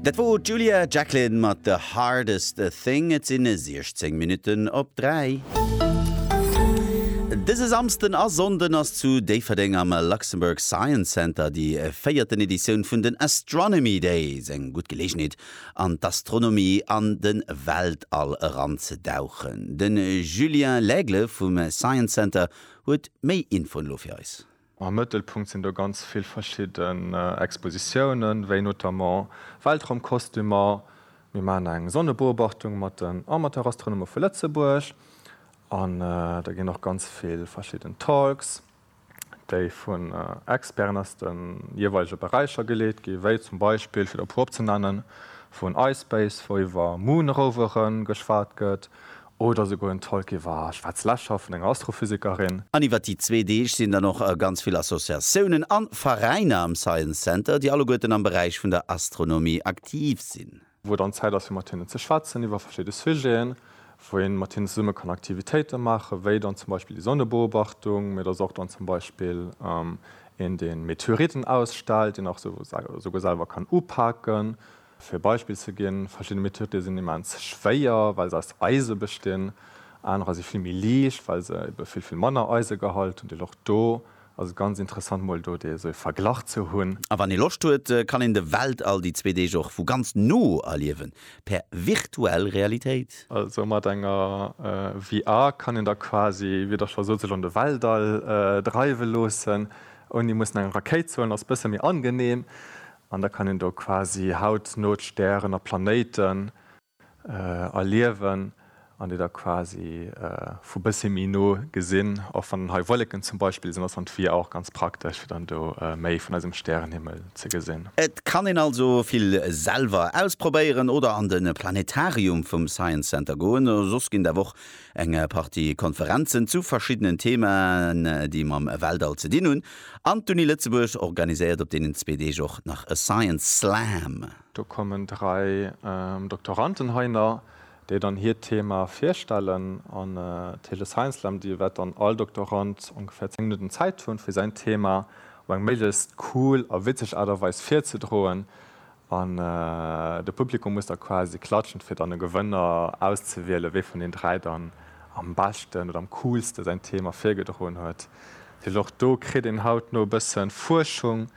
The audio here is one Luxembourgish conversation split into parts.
Dat wor d'Julia Jacklin mat The Hardest Thing. Et sinn 16 Minutten op 3. Dëse Samsden a Sonnden ass zu Déifferdeng am Luxembourg Science Center déi véierten Editioun vun den Astronomy Days. Eng gutt Geleegenheet an d'Astronomie an de Weltall eranzedauchen. Den Julien Laigle vum Science Center huet méi Infoen elo fir eis. Am Mëttelpunkt sinn do ganz vill verschidden Expositiounen, wéi notamment Weltraumkostümer, mir maachen eng Sonnebeobachtung mat den Amateurastronome vu Lëtzebuerg an da ginn och ganz vill verschidden Talks, déi vun Experten aus de jeeweilege Beräicher geleet ginn, wéi zum Beispill, fir der e puer opzenennen, vun iSpace, wou iwwer Moon-Rovere geschwat gëtt, Oder souguer en Talk iwwer ech war zlescht Schaf vun enger Astrophysikerin. An iwwer déi zwee Deeg sinn dann och ganz vill Associatiounen an Veräiner am Science Center, déi alleguerten am Beräich vun der Astronomie aktiv sinn. Wou dann Zäit ass fir mat hinnen ze schwätzen iwwer verschidde Sujeten, wou een mat hinnen zesummen kann Aktivitéiten maachen, wéi dann zum Beispill déi Sonnebeobachtung, mee et ass och dann zum Beispill een deen Meteoriten ausstellt, deen och souguer selwer kann upaken. Fir e Beispill ze ginn, Verschidde Methoden sinn immens schwéier, well se aus Eise bestinn. Anerer si vill méi liicht, well se ebe vill, vill manner Eisegehalt hunn. Deel och do ass et ganz interessant, mol do dee esou e Verglach ze hunn. A wann ee Loscht huet, kann een de Weltall déi zwee Deeg och vu ganz no erliewen, per virtuell Realitéit. Also mat enger VR kann een da quasi, wéi Der scho sot, sech an de Weltall dreiwe loossen, ouni mussen eng Rakéit ze huelen. Ass e bësse méi angenehm. An da kann een do quasi hautno d'Stären a Planéiten erliewen an déi da quasi vu bëssi méi no gesinn. Och wann hei Wolleken zum Beispill sinn, ass dann d'Vue auch ganz praktesch, fir dann do méi vun eisem Stärenhimmel ze gesinn. Et kann een also vill selwer ausprobéieren oder an de Planetarium vum Science Center goen. Soss ginn der Woch eng Partie Konferenzen zu verschiddenen Theemaen, déi mam Weltall ze dinn hunn. An d'Uni Lëtzebuerg organiséiert op deenen zwee Deeg och nach e Science Slam. Do kommen dräi Doktoranten hei na, déi dann hiert Thema virstellen. An d'Heele Science Slam, do wäert dann all Doktorant ongeféier 10 Minutten Zäit hunn, fir säin Thema op eng méiglechst cool a witzeg Aart a Weis virzedroen. An de Publikum muss da quasi klatschen, fir dann e Gewënner auszewielen, wee vun den dräi dann am beschten oder am coolste säin Thema virgedroen huet. Well och do kritt een hautno e bësse Fuerschung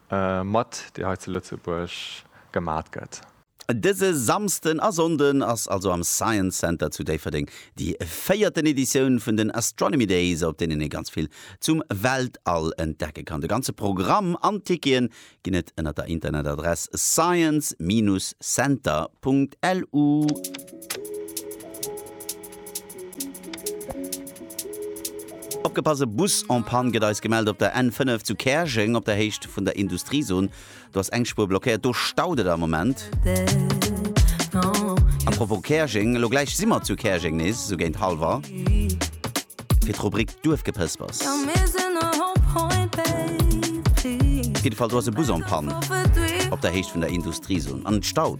mat, déi hei zu Lëtzebuerg gemat gëtt. Dëse Samsden a Sonnden ass also am Science Center zu Déifferdeng déi véierten Editioun vun den Astronomy Days, op deenen ee ganz vill zum Weltall entdecke kann. De ganze Programm an d'Tickete ginn et ënner der Internetadress science-center.lu. Opgepass, e Bus en Panne gëtt eis gemellt op der N5 zu Käerjeng op der Héicht vun der Industriezon. Do ass eng Spuer blockéiert, do staut et am Moment. A propos Käerjeng, elo gläich si mer zu Käerjeng nees esou géint halwer. fir d'Rubrik Duerfgepëspers. Op jiddefall do ass e Bus en Panne op der Héicht vun der Industriezon an et staut.